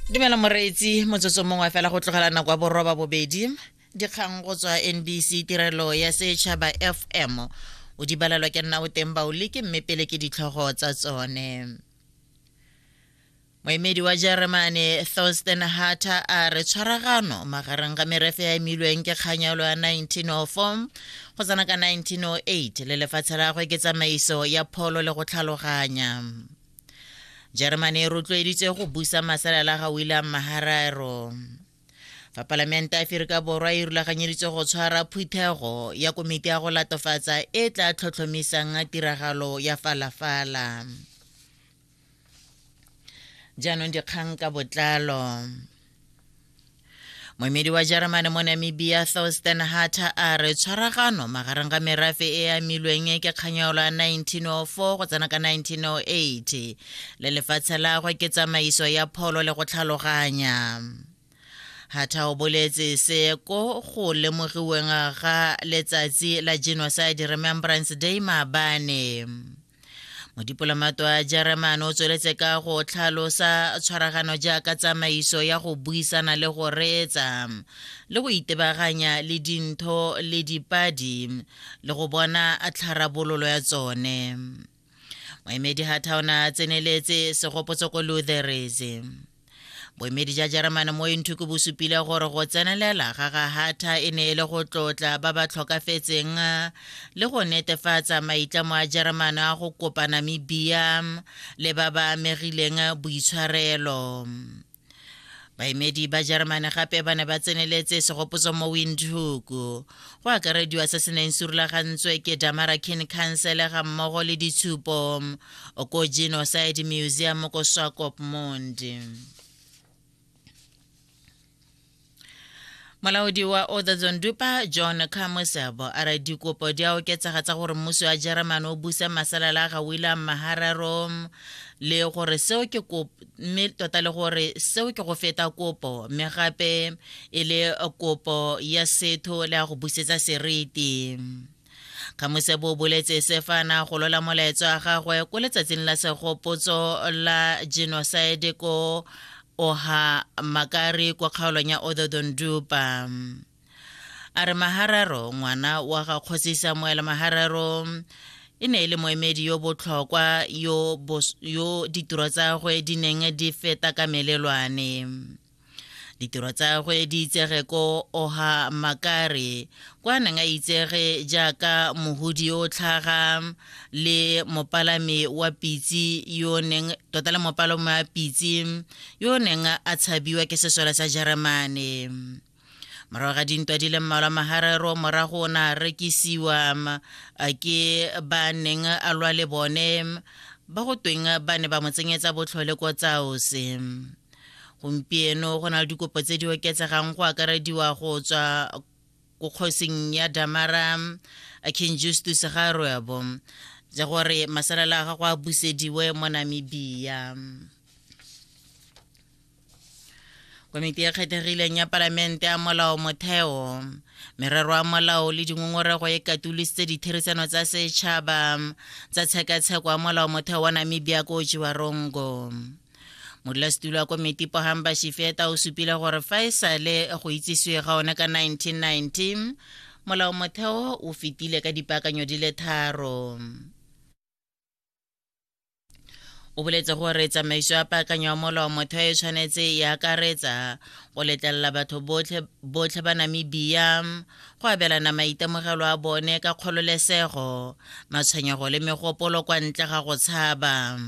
dumela moreetsi motsotso mongwe fela go tlogela nako ya boroba bobedi dikgang go tswa nbc tirelo ya setšhaba fm o di balelwa ke nna o teng baoleke mme pele ke ditlhogo tsa tsone moemedi wa jeremane thorsten harter a re tshwaragano magareng ga merefe ya emilweng ke kganyalo ya 1904 go tsena ka 1908 le lefatshe la gagwe ke tsamaiso ya pholo le go tlhaloganya germany e rotloeditswe go busa masalela ga william mahararo fa palamente ya aferika borwa e rulaganyeditswe go tshwara phuthego ya komiti ya go latofatsa e tla tlhotlhomisang tiragalo ya falafala jaanong dikgang ka botlalo moemedi wa jeremane mo namibia thorsten hatter a re tshwaragano magareng ga merafe e e amilweng e ke kganyaolo ya 1904 go tsena ka 1908 le lefatshe lagwe ke tsamaiso ya pholo le go tlhaloganya Hatha o boletse se ko go lemogiweng ga letsatsi la Genocide Remembrance Day maabane. modipolamato wa jeremane o tsweletse ka go tlhalosa tshwaragano jaaka tsamaiso ya go buisana le go reetsa le go itebaganya le dintho le dipadi le go bona tlharabololo ya tsone moemedi ga thaona a tseneletse segopotso ko lutherese boemedi ja jeremane mo inthuku bo supile gore go tsenelela ga ga hatha e ne e le go tlotla ba ba tlhokafetseng le go netefatsa maitlamo a jeremane a go kopa namibia le ba ba amegileng boitshwarelo baemedi ba jeremane gape ba ne ba tseneletse segopotso mo windhoek go akarediwa se se neng se rulagantswe ke damarakin council ga mmogo le ditshupo ku genocide museum ku swakopmund molaodi wa othazon dupa john kamusebo a re dikopo di a oketsega tsa gore mmuso wa jeremane o busa masalela a ga william mahararo le gore seo ke kopo mme tota le gore seo ke go feta kopo mme gape e le kopo ya setho le ya go busetsa seriti kgamosepo o boletse se fa na golola molaetso wa gagwe ko letsatsing la segopotso la genocide ko oha makari kwa kgaolong ya ododondupa a re mahararo ngwana wa ga kgosi samuel mahararo e ne e le moemedi yo botlhokwa yo, yo ditiro tsa gwe di neng di feta ka melelwane ditiro tsa gwe di itsege ko oha makare kwa neng a itsege jaaka mohudi yo o tlhaga le mopalami wa pitsi yo neng tota le mopalami wa pitsi yo neng a tshabiwa ke sesole sa jeremane morago ga dintwa di le mmalwa maharero morago o ne a rekisiwa ke ba neng a lwa le bone ba go tweng ba ne ba mo tsenyetsa botlhole ko tsaose gompieno go na le dikopo tse di oketsegang go akarediwa go tswa ko kgosing ya damara king justus ga roebo ja gore masalela a gago a busediwe mo namibia komiti e kgethegileng ya palamente ya molao motheo merero ya molao le dingongorego e katolositse ditherisano tsa setšhaba tsa tshekatsheko ya molao motheo wa namibia ko jiwarongo modulasetulo wa komiti pohang bashifeta o supile gore fa e sale go itsisiwe ga one ka 1919 molao motheo o fetile ka dipaakanyo di le tharo o boletse gore tsamaiso ya paakanyo ya molao motheo e tshwanetse e akaretsa go letlelela batho botlhe ba namibia go abelana maitemogelo a bone ka kgololesego matshwenyego le megopolo kwa ntle ga go tshaba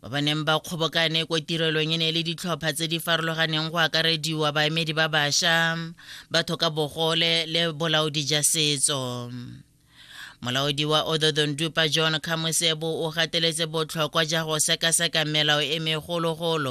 ba ba neng ba kgobokane ko tirelong e ne e le ditlhopha tse di farologaneng go akarediwa baemedi ba bašwa batho ka bogole le bolaodi ja setso molaodi wa ododon dupa john khamosebo o gateletse botlhokwa ja go sekaseka melao e megologolo